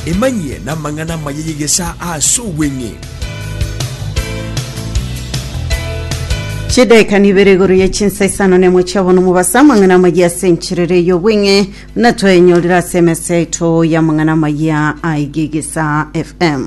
Emanyie namang'ana amaya y'egesaa aase obweng'e. Chidaeka nibere igoro ye chinsa isano nemo chia bono mobasa amang'ana amayia ase encherera ey'obweng'e buna twayenyorire ase emesa yaito y'amang'ana amayia aigegesa FM.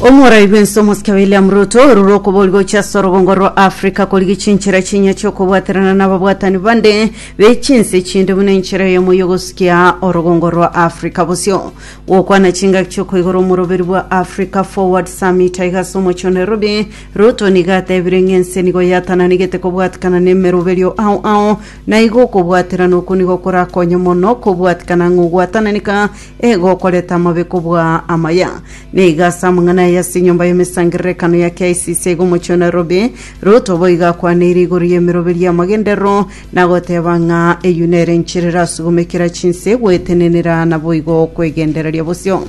Omorai bwensi omosike William Ruto orure okobori gochia ase orobongo rwa Africa korigia chinchera chinya chiokobwaterana nababwatani bande be chinse chinde buna enchera eyemo yogosukia orobongo rwa Africa bosio. Gokwana chingaki chiokoigora omoroberi bwa Africa Forward Summit aiga ase omochie o Nairobi, Ruto nigo atebire ng'a ense nigo yatananigete kobwatekana nemeroberio ao ao Na igo okobwaterana oko nigo korakonye mono kobwatikana ng'a ogwatananeka egokoreta amabe kobua amaya. Na iga ase amang'ana aya ase enyomba y'emesangererekano ya KICC aiga omochie o Nairobi, Ruto boigo akwaneire igoro y'emeroberi y'amagenderero na goteba ng'a eyio nere enchera erasugumekera chinse gwetenenera naboigo okwegendereria bosio.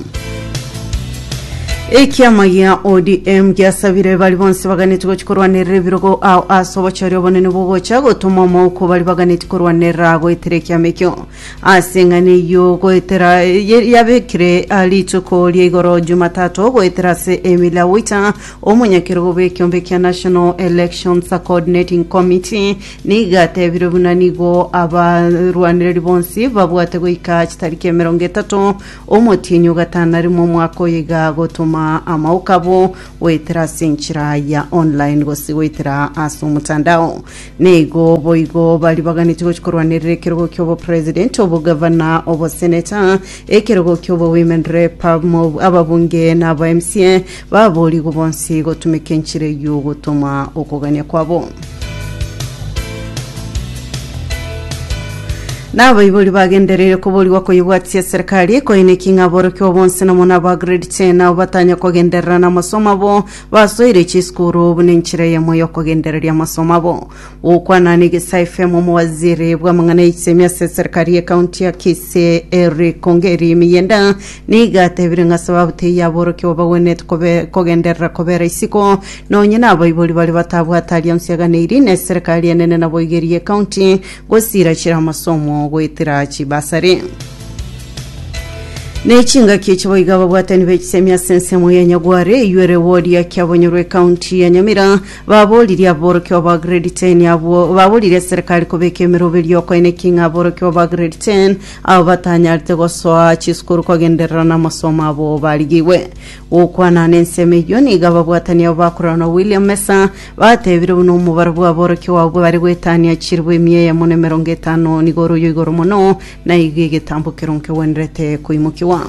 Ekiama gia ODM giasabire bari bonsi baganeti gochi korwanerera ebirogo ao ase obochori obonene bwogocha gotoma omouko bari baganeti korwanerera goetera ekiama ekio ase eng'ana eyio goetera ye- yabekire ah, rituko ria igoro Jumatatu goetera ase Emily Awita omonyakerogo bw'ekiombe kia National Elections Coordinating Committee nigo atebire buna nigo abarwanereri bonsi babwate goika chitariki emerongo etato Omotienyi o gatano arimo omwaka oyo iga agotoma amaoka abo goetera ase enchera ya online gose goetera ase omotandao. Neigo boigo baribaganeti gochia korwanerera ekerogo kia obopresident, obogavana, obosenator, ekerogo kia obowomen rep, ababunge na aba mca Baboorigwe bonsi gotumeka enchera eyio gotoma okogania kwabo. Nabaibori bagendereire koborigwa koyebwatia eserekari koineki ng'a aborokigwa bonsi nomo na aba grade 10 nao batanya kogenderera namasomo abo basoire chisukuru buna enchera eyemo y'okogendereria amasomo abo. Gokwana n'egesa FM omowaziri bw'amang'ana y'eisemi ase eserikari y'ekaunti ya Kisii Eric Ongeri Miyenda nigo atebire ng'a sababu teiyo aborokia babagwenerete kobe kogenderera kobera isiko nonye nabaibori baria batabwate alliance eganeirie neserikari enene naboigeri y'ekaunti gosira chire amasomo goetera chibasari. Nechingaki echi boiga ababwatani b'echisemi ase ensemo ya Nyagware eywo ere ward ya Kiabonyorwa ekaunti ya Nyamira Baboririe aborokigwa ba Grade 10 abwo baboririe eserekari kobeka emeroberio y'okoina ki ng'a aborokigwa ba Grade 10 abo batanyarete gosoa chisukuru kogenderera namasomo abo barigigwe gokwana nensemo eyio. Nigo ababwatani abo bakorana na William Mesa batebire buna omobaro bw'aborokigwa abwo bare goetania chiribu emia eyemo na emerongo etano nigo ore oyoigoro mono Naiga egetambo ekero nkegwenerete koimokigwa.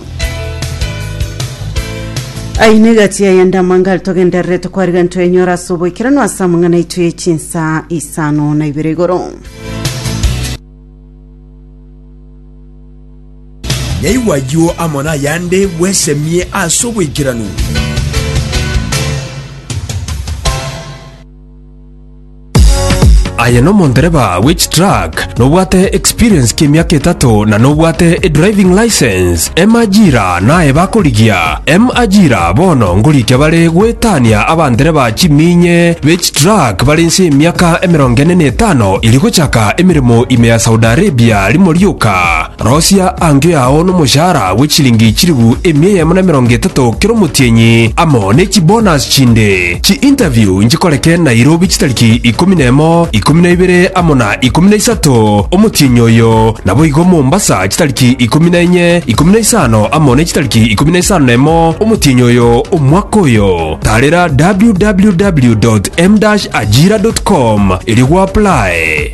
Ayio ne egati yaye ande amanga are togendererete kwariga ntwenyora ase oboikeranu ase amang'ana aito ye chinsa isano na ibere igoro. Naigwe ayio amo nayande bwesemie ase oboikeranu. Aye nomondereba bwe chitruck, nobwate experience ki'emiaka etato na nobwate edriving license, M ajira naye bakorigia. M ajira bono ngorikia bare goetania abandereba chimiinye be chitruck bare inse y'emiaka emerongo ene na etano eri gochaka emeremo ime ya Saudi Arabia rimo rioka. Rosia angio yao nomoshahara bwe chilingi chilifu emia eyemo na emerongo etato kera omotienyi, amo ne chibonus chinde. Chi-interview nchikoreke Nairobi chitariki ikomi na emo, ikomi na ibere amo na ikomi na isato omotienyi oyo, naboigo Mombasa chitariki ikomi na enye, ikomi na isano amo ne chitariki ikomi na isano na emo omotienyi oyo omwaka oyo. Tarera www.m-ajira.com erio gwaplae.